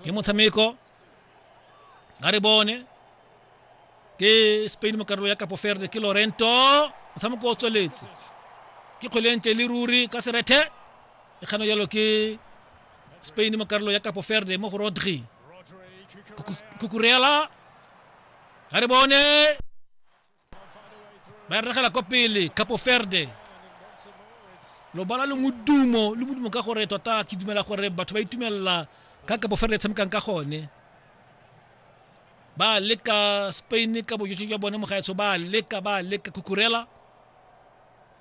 ke motshameko ga re bone ke spain mo karolo ya kapo ferde ke lorento motshameko o tsweletse ke kgwelente le ruri ka serethe e kgano jalo ke spain mo karolo ya kapo ferde mo go rodri kukurela ga re bone ba regela kwa pele capo verde lobala le modumo le modumo ka gore tota ke dumela gore batho ba itumelela ka capo verde e tshamekang ka gone ba leka spain ka bojotsho jwa bone mogaetsho ba leka ba leka kukurela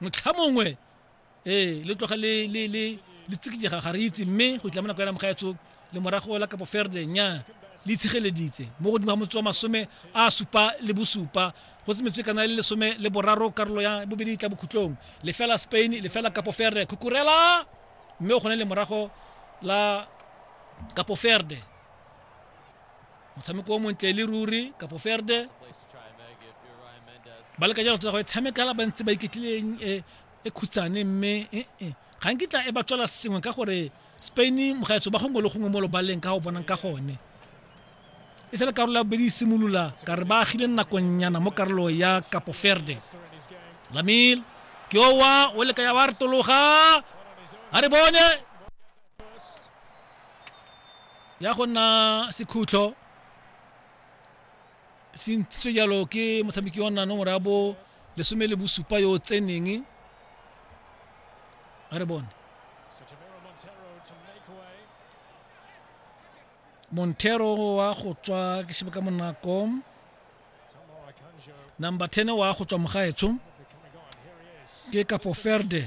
motlha mongwe ee le tloga le le le le tsikijega ga re itse mme go itlama nako ya namgaetso le morago la kapo ferde nya le itshegeleditse mo godimo ga motse wa masome a supa le bosupa go se metswe kana le lesome le boraro karolo ya bobedi tla bokhutlong lefela spain lefela kapo ferde khukurela mme o kgone le morago la kapo ferde motshameko o montle le ruri kapo ferde ba leka jalo tota go e tshamekala ba ntse ba iketlileng e, e khutsane mme e, e, ga nkitla e ba tswela sengwe ka gore spain mogaetso ba gongwe le gongwe mo lobaleng ka go bonang ka gone e sele karolo ya bobedi e simolola ka re ba agile nakonyana mo karolo ya kapo ferde lamil ke owa o leka ya wa re tologa a re bone ya go nna sekhutlo se ntshitswe jalo ke motshameki wa nna nomoro ya bo lesome le bosupa yo o tseneng a re bone montero wa go tswa ke shebe ka monako number 10 wa go tswa mogaetsho ke kapo ferde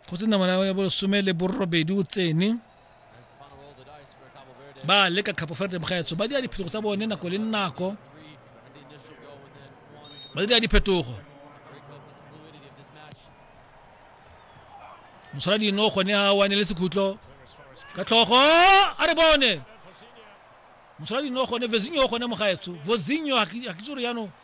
go se namana ya bolesome le borobedi o tsene ba leka capo verde mogaetso ba dira diphetogo tsa bone nako le nako ba dira diphetogo mosala dino gone a wane le sekhutlo ka tlhogo a re bone mosala dino gone vezinho gone mogaetso vozinho ga ke tsore yaanong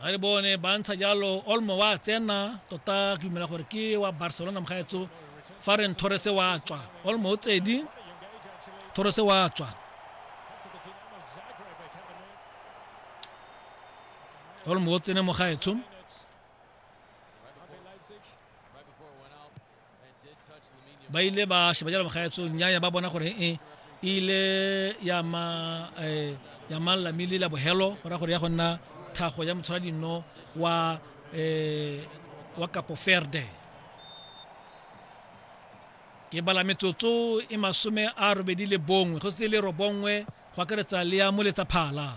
ga re bone ba ntsha jalo olmo wa tsena tota ke dumela gore ke wa barcelona mogaetso fa reng torrese wa tswa olmo o tsedi torrese wa tswa olmo o tsene mogaetsho ba ile ba sheba jalo magaetso nnyaya ba bona gore e ile ya ma eh, ya mang lamile la bohelo go ra gore ya go nna thago ya motshwara dino wa eh, wa kapo ferde ke bala metsotso e masome a robedi le bongwe go se le robongwe go akaretsa le ya moletsa phala